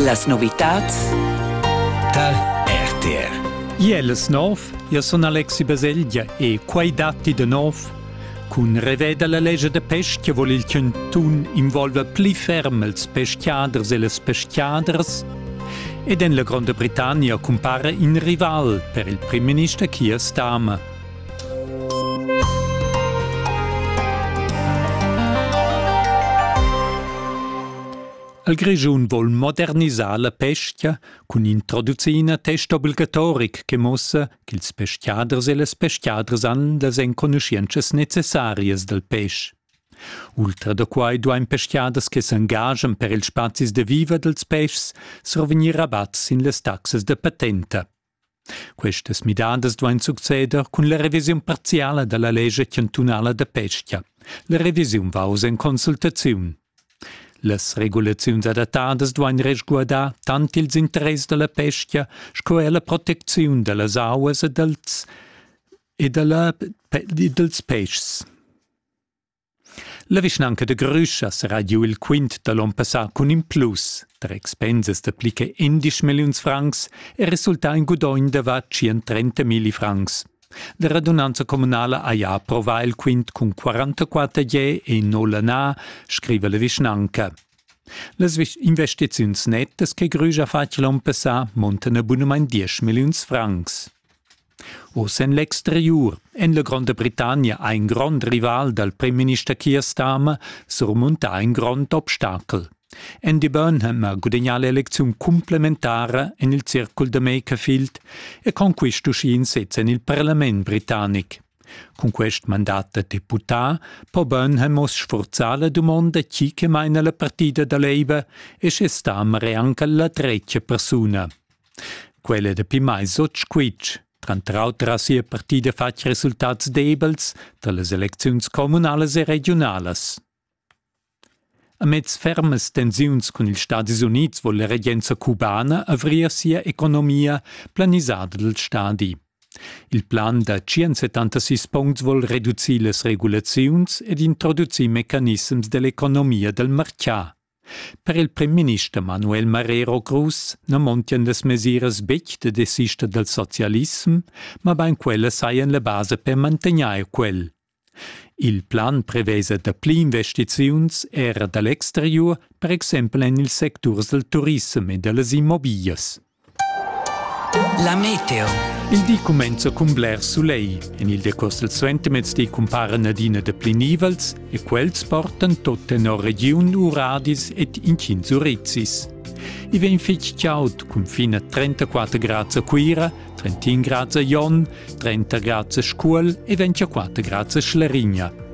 Las novitads tar RTR. Iel es nov, io sun Alexi Baselgia e quai datti de nov. Cun reveda la legge de pestia vol il cantun involva pli ferm els peschiaders e les peschiaders ed en la Granda Britannia cumpara in rival per il prim minister Keir Starmer. Il Grischun vol modernisar la pescha cun introducina test obligatoric che muossa ch'ils peschiaders e las peschiadras han las enconuschientschas necessarias dal pesch. Ultra da quai duain peschiaders che s'engaschan per ils spazis da viver dals peschs survegnir rabatt sin las taxas da patenta. Questas midadas duain succeder cun la revisiun parziala da la lescha chantunala da pestga. La revisiun va oz en consultaziun. Las regulaziuns adattadas duain resguardar tant ils interess da la pestga sco er la protecziun da las auas e dals, e da la, dals peschs. La vischnanca de Grüschas ha giu il quint da l'on passà cun in plus da expensas da pli che endisch milliuns francs e resultà in gudogn da var 130 milli francs. La radunanza communala ha ja approvà il quint cun 44 je e nulla na, scriva la vischnanca. Las investiziuns nettas che Grüsch ha fatg l'on passà montan a bunumain 10 milliuns francs. Oz en l'exteriur en la Gronda Britannia ha in grond rival dal primminister Keir Starmer surmuntà in grond obstacel. Andy Burnham ha gudagnà l'elecziun cumplementara en il circul da Makerfield e conquist uschì in sez en il parlament britannic. Cun quest mandat da deputà po Burnham oz sfurzar la dumonda chi che maina la partida da Labour e sche Starmer è anche la tretga persuna. Quella è dapi mai sut squitsch. Tranter auter ha sia partida fatg resultats debels da las elecziuns communalas e regiunalas. Amez fermas tensiuns cun ils Stadis Unids vuol la regenza cubana avrir sia economia planisada dal stadi. Il plan da 176 puncts vuol reducir las regulaziuns ed introducir mecanissems dell'economia dal marchà. Per il primminister Manuel Marrero Cruz na montian las mesiras betg da desister dal socialissem, mabain quellas sajan la basa per mantegnair quel. Il plan prevesa dapli investiziuns era da l'exteriur, per exempel en ils secturs dal turissem e da las immobiglias. La meteo. Il di cumenza cun bler sulegl. En il decurs del suentermezdi cumparen adina dapli nivels e quels portan tot tenor regiun uradis et incins urizis. I vegn fitg chaud, cun fin a 34 grads a Cuira, 31 grads a Jon, 30 grads a Scuol e 24 grads a Schlerigna.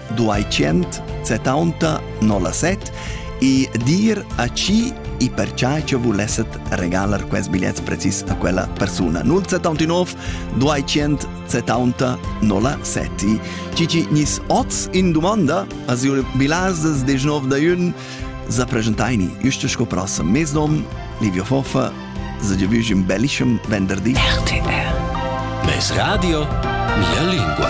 270 07 e dir a chi e perciò che volesset regalar quest bigliet precis a quella persona 079 270 07 Cici nis oz in domanda as io bilases 19 da jun za presentaini isto sco prossam mesdom Livio Foffa za ge vügim bellischem venderdi RTR Mes radio mia lingua